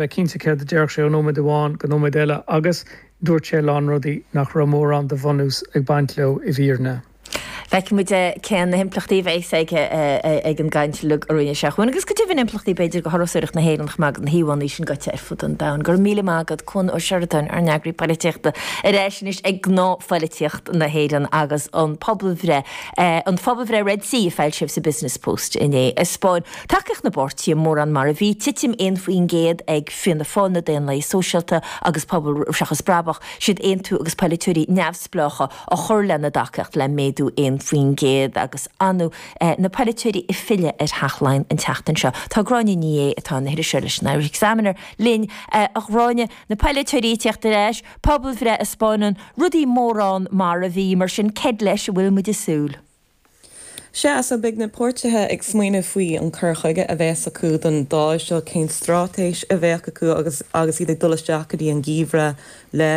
bheith cinnte céard a déarfadh sé ó nóiméad amháin go nóiméad eile agus dúirt sé a lán rudaí nach raibh mórán de bhunús ag baint leo i bhfírinne. Feicfidh muid cé na himpleachtaí a bheas aige ag an gcaint uilig a rinne sé ann agus go deimhin impleachtaí b'fhéidir do thurasóireacht na hÉireann chomh maith agus na híomhánna sin gaibhte ar fud an domhain. Go raibh míle maith agat Cuan Ó Seireadáin ár n-eagraí Polaitíochta ar ais anois go gnáthpholaitíocht na hÉireann agus an phobalbhreith, an phobalbhreith Red C a foilsíodh sa Business Post inné a 'spáin tacaíocht na bpáirtithe mórán mar a bhí, titim 1% ag Fianna Fáil, na Daonlathaigh Sóisialta agus Pobal Seachas Brabach, siad Aontú agus polaiteoirí neamhspleácha a chuir lena dtacaíocht le méadú 1% agus ar ndóigh na polaiteoirí ag filleadh ar Theach Laighean an tseachtain seo. Tá Gráinne Ní Aodha, atá ina hiriseoir leis an Irish Examiner, linn. A Ghráinne, na polaiteoirí ag teacht ar ais, pobalbhreith a 'spáineann, rudaí mórán mar a bhí, mar sin céard leis a bhfuil muid ag súil? Sea, so beidh na páirtithe ag smaoineamh faoi an cur chuige a bheas acu don Dáil seo, cén straitéis a bheadh acu agus agus iad ag dul isteach go dtí an Geimhreadh le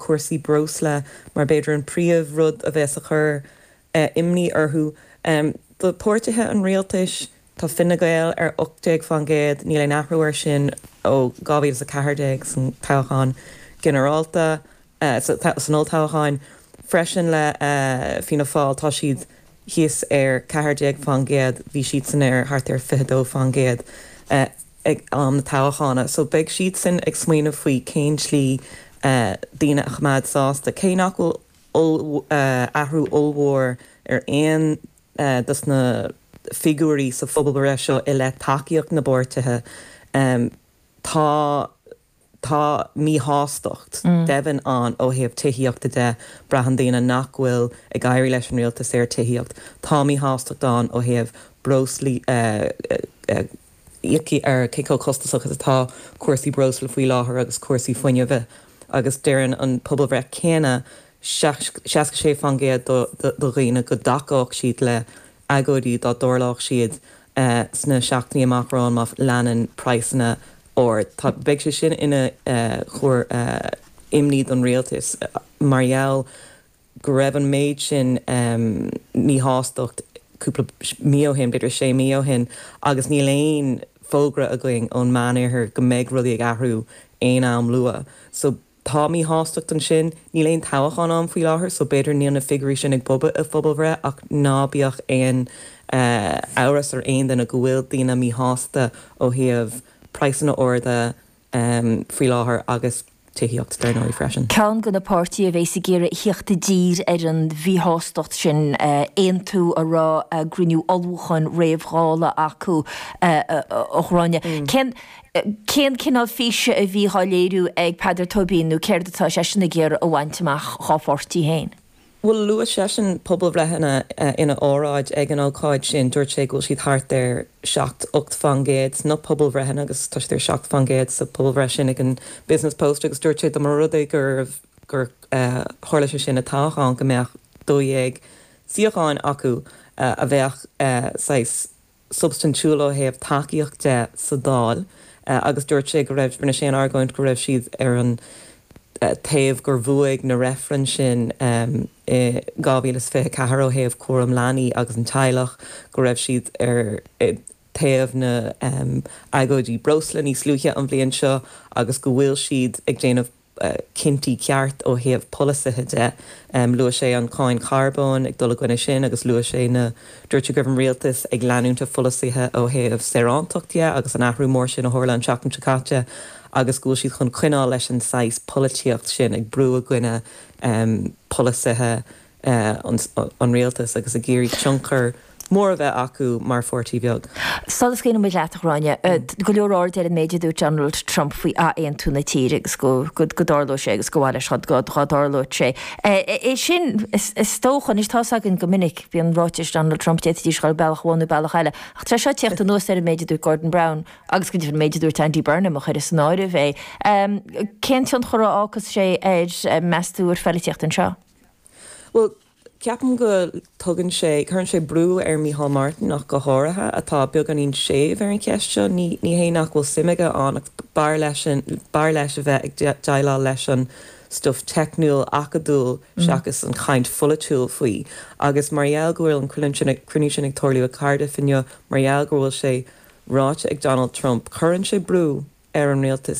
cúrsaí breosla mar b'fhéidir an príomh rud a bheas ag cur imní orthu. Do pháirtithe an Rialtais, Tá Fine Gael ar 18%, níl aon athrú air sin ó 2014 san toghchán ginearálta, san olltoghcháin freisin le Fianna Fáil tá siad thíos ar 14%, bhí siadsan ar thart ar 22% ag am na toghchána. So beidh siadsan ag smaoineamh faoi cén slí daoine a choimeád sásta, cé nach bhfuil athrú ollmhór ar aon dos na figiúirí sa phobalbhreith seo i leith tacaíocht na bpáirtithe, tá tá míshástacht deimhin ann ó thaobh tithíochta de. Braitheann daoine nach bhfuil ag éirí leis an rialtas ar tithíocht. Tá míshástacht ann ó thaobh breoslaí, íoc ar cé chomh costasach is atá cúrsaí breosla faoi láthair agus cúrsaí fuinnimh agus deireann an pobalbhreith céanna 66% de dhaoine go dtacódh siad le agóidí dá dtarlódh siad sna seachtainí amach romhainn má leanann praghsanna ard. Tá. Beidh sé sin ina chúis imní don rialtas mar gheall go raibh an méid sin míshástachta cúpla mí ó shin, b'fhéidir 6 mí ó shin, agus níl aon fógra againn ón Meánoirthear go mbeidh rudaí ag athrú aon am luath. So. Tá míshástacht ansin. Níl aon toghchán ann faoi láthair so b'fhéidir níl na figiúirí sin ag bogadh i phobalbhreith ach ná bíodh aon amhras ar aon duine go bhfuil daoine míshásta ó thaobh praghsanna arda faoi láthair agus tithíocht dar ndóigh freisin. Ceann de na páirtithe a bheas ag iarraidh a theacht i dtír ar an mhíshástacht sin, Aontú, a raibh a gcruinniú ullmhúcháin réamh-Dhála acu, a Ghráinne, cén. cén cineál físe a bhí dá léiriú ag Peadar Tóibín nó céard atá seisean ag iarraidh a bhaint amach dá pháirtí féin? Bhuel, luaigh seisean pobalbhreitheanna ina óráid ag an ócáid sin, dúirt sé go bhfuil siad thart ar seacht, ocht fán gcéad sna pobalbhreitheanna agus tá siad ar seacht fán gcéad sa bpobalbhreith sin ag an Business Post agus dúirt sé dá mba rud é gur tharla sé sin i toghchán go mbeadh dó dhéag suíocháin acu a bheadh saghas substaintiúil ó thaobh tacaíochta de sa Dáil agus dúirt sé go raibh, rinne sé an argóint go raibh siad ar an taobh gur bhuaigh na reifrinn sin i 2024 ó thaobh cúram leanaí agus an teaghlach, go raibh siad ar taobh na agóidí breosla níos luaithe an bhliain seo agus go bhfuil siad ag déanamh. cinntí ceart ó thaobh polasaithe de. Luaigh sé an cáin charbóin ag dul i gcoinne sin agus luaigh sé na Dúirt sé go raibh an rialtas ag leanúint a bpolasaithe ó thaobh saoránachta de agus an athrú mór sin a tharla an tseachtain seo caite agus go bhfuil siad chun coinneáil leis an saghas polaitíocht sin, ag brú i gcoinne polasaithe an rialtas agus ag iarraidh tionchar mór a bheith acu mar pháirtí bheag. Sula scarfaidh muid leat, a Ghráinne? Tá go leor airde ar an méid a dúirt Donald Trump faoi athaontú na tíre agus go dtarlóidh sé agus gur mhaith leis dá dtarlódh sé. É sin, is dócha. Anois, tá's againn go minic, bíonn ráitis Donald Trump, d'fhéadfaidís a ghoil bealach amháin nó bealach eile. Ach tar éis a theacht anuas ar an méid a dúirt Gordon Brown agus go deimhin an méid a dúirt Andy Burnham, a chur san áireamh é, cén tionchar a fhágfas sé ar, meas tú, ar an bpolaitíocht anseo? Bhuel, ceapaim go dtugann sé, cuireann sé brú ar Mhicheál Martin ach go háirithe, atá beagáinín séimh ar an cheist seo. Ní hé nach bhfuil suim aige ann ach b'fhearr leisean, b'fhearr leis a bheith ag déileáil leis an stuif teicniúil, acadúil seachas an chaint pholaitiúil faoi. Agus mar gheall go bhfuil an cruinniú sin ag tarlú i gCardiff inniu, mar gheall go bhfuil sé ráite ag Donald Trump, cuireann sé brú ar an rialtas.